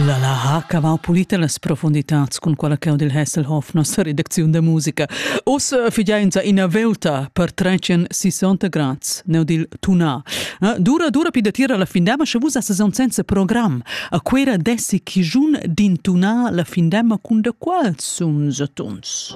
La ha cavau pulita las profunditads cun quella cheu dil Hasselhoff nossa redacziun da musica. Oz figiainza ina velta per trecen 60 grads neu dil tuna. Eh, dura dura pi da tira la findema sche vus as son senza program. A quera dessi chi giun din tuna la findema cun da qual sun satuns?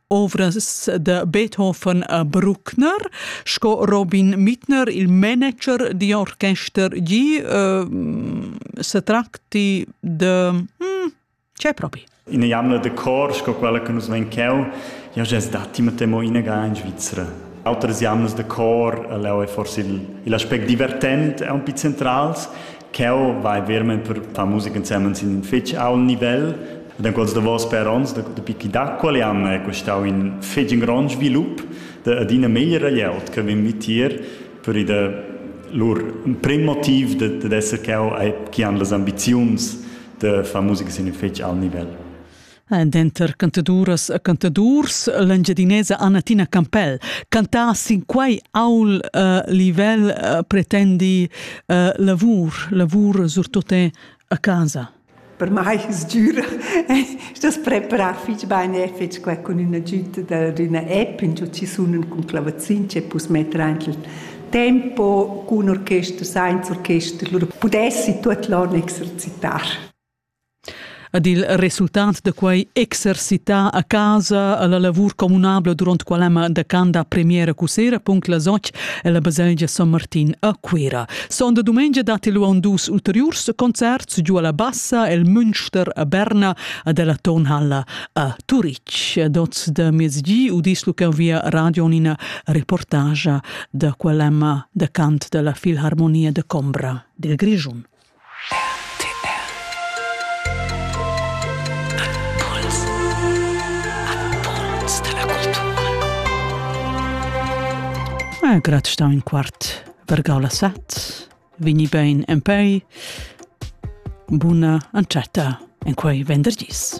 ovras da Beethoven a Bruckner, sco Robin Mittner, il manager di orchester gi, uh, se tracti de... Hm, c'è proprio? In jamna de cor, sco quella che nus ven cheu, io già datti ma temo inaga in Svizzera. Outras jamnas de cor, leu è forse il, il aspect divertent, è un po' centrals, Ch'eu vai vermaing per far musica insemens in fich ault nivel. Ed in quels davos per ons, dapi chi da quel an è stau in fich in grond svilup, ed ina meglra glieud che vegn vitier per i da lur prim motiv dad esser cheu e chi han las ambiziuns da far musica sin in fich ault nivel. Denter cantaduras e cantadurs l'Engiadinesa Annatina Campell cantà sin quei aul uh, livel uh, pretendi uh, lavur, lavur surtut a casa. Per mai es dura das preparar fich bene fetg qua cun üna giüta d'üna app in ci sunen cun clavazin che pus metter aint il tempo cun orchester, sainz orchester, lur pudessi tuot l'on exercitar. Ed il resultat da quei exercitar a casa alla lavur communabla duront quell'emma da can da premiera cussera punct las otg ella baselgia San Martin a Cuera. Sonda dumengia datti lu aunc dus ulteriurs concerts giu alla Bassa el Münster a Berna ed ella Tonhalla a Turitg. Ed oz da miezgi udis lu cheu via radio ina reportagia da quell'emma da cant dalla Filharmonia de Combra dil Grischun. Grat stau in quart vergau la set, vini bein en pei, buna antschetta en quei vendergis.